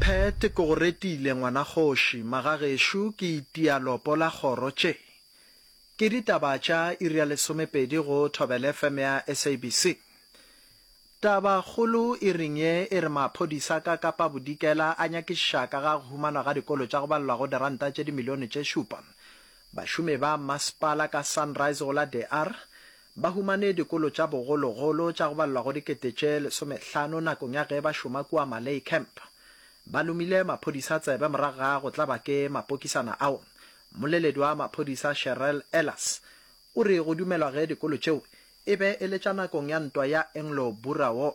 Phet, Ke go retile, ngwana kgoši. Magagešo, ke itia lopo la kgoro tše. Ke ditaba tša iri ya lesomepedi go Thobela FM ya SABC. Taba kgolo iring ye e re maphodisa ka Kapa Bodikela a nyakišiša ka ga go humanwa ga dikolo tša go balelwa go diranta tše dimilione tše šupa. Bašomi ba masepala ka Sunrise go la De Aar Ba humane dikolo tša bogologolo tša go balelwa go dikete tše lesomehlano nakong ya ge ba šoma kua Malay Camp. Ba lomile maphodisa tsebe morago ga go tlaba ke mapokisana ao. Mmoleledi wa maphodisa Sherrell Ellas o re go dumelwa ge dikolo tšeo e be e le tša nakong ya ntwa ya Anglo-Boer War.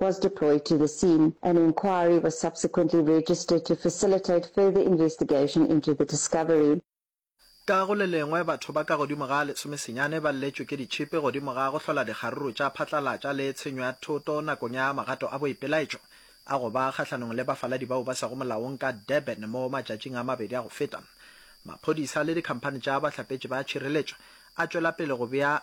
was deployed to the scene. An inquiry was subsequently registered to facilitate further investigation into the discovery. Ka go le lengwe, batho ba ka godimo ga lesomesenyane ba lletšwe ke ditšhipi godimo ga go hlola dikgaruru tša phatlalatša le tshenyo ya thoto nakong ya magato a boipelaetšo a go ba kgahlanong le bafaladi bao ba sego molaong ka Durban mo matšatšing a mabedi a go feta. Maphodisa le dikhamphani tša bahlapetši ba tšhireletšo a tšwela pele go bea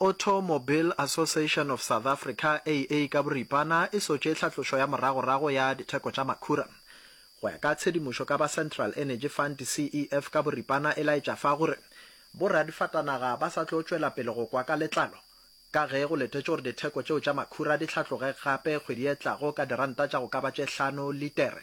Auto Mobile Association of South Africa, AA, ka boripana e sotše tlhatlošo ya moragorago ya ditheko tša makhura. Go ya ka tshedimošo ka ba Central Energy Fund, CEF, ka boripana e laetša fa gore boradifatanaga ba sa tlo tšwela pele go kwa ka letlalo ka ge go letetšwe gore ditheko tšeo tša makhura di hlatloge gape kgwedi e tlago ka diranta tša go ka ba tše hlano litere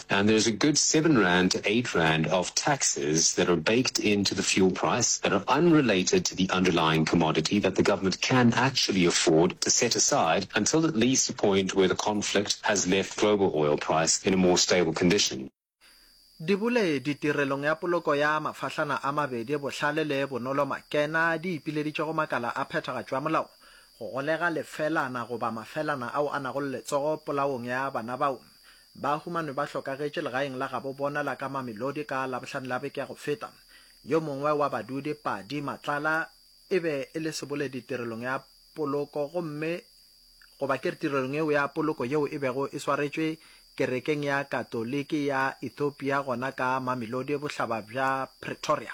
and there is a good seven rand to eight rand of taxes that are baked into the fuel price that are unrelated to the underlying commodity that the government can actually afford to set aside until at least a point where the conflict has left global oil price in a more stable condition. Dibule di tirelong ya poloko ya mafahlana a mabedi bohlale le bonolo makena di ipileditše go makala a phethagatšo ya molao go golega lefelana goba mafelana ao a nago le letsogo polaong ya bana bao Ba humanwe ba hlokagetše legaeng la gabo bona la ka Mamelodi ka Labohlano la beke ya go feta. Yo mongwe wa badudi, Padi Matlala, e be e le seboledi tirelong ya poloko gomme goba ke re tirelong yeo ya poloko yeo e bego e swaretšwe kerekeng ya Katoliki ya Ethiopia gona ka Mamelodi bohlaba bja Pretoria.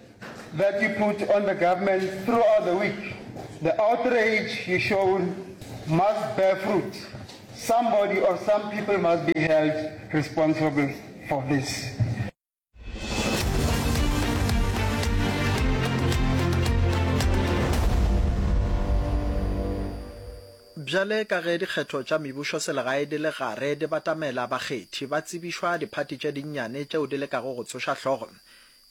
that you put on the government throughout the week, the outrage you shown must bear fruit. Somebody or some people must be held responsible for this. bjale ka ge dikgetho tša mebušo selegae di le gare di batamela bakgethi ba tsebišwa diphati tše dinnyane tšeo di lekago go tsoša hlogo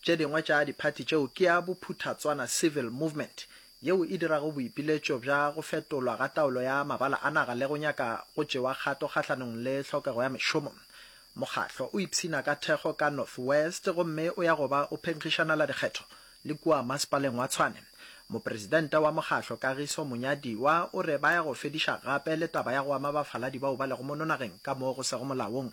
Tše dingwe tša diphathi tšeo ke ya bophuthatswana civil movement yeo e dirago boipiletšo bja go fetolwa ga taolo ya mabala a naga le go nyaka go tšewa kgato kgahlanong le tlhokego ya mešomo. Mokgahlo o ipshina ka thekgo ka North West gomme o ya go ba o phenkgišanela dikgetho le kua masepaleng wa Tshwane. Mopresidente wa mokgahlo Kagiso Monyadiwa o re ba ya go fediša gape le taba ya go ama bafaladi bao ba lego mono nageng ka mo go sego molaong.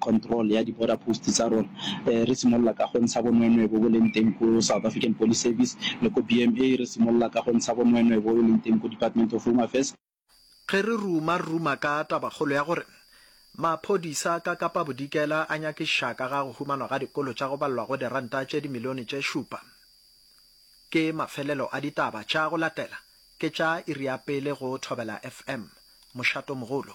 control ya di border post tsa rona. Re simolola ka go ntsha bonwenwe bo bo leng teng ko South African Police Service le ko BMA, re simolola ka go ntsha bonwenwe bo bo leng teng ko Department of Home Affairs. Ge re ruma ruma ka tabakgolo ya gore maphodisa ka Kapa Bodikela a nyakiša ka ga go humanwa ga dikolo tša go balwa go diranta tše dimilione tše šupa, ke mafelelo a ditaba tša go latela ke tša iri ya pele go Thobela FM, Mošatomogolo.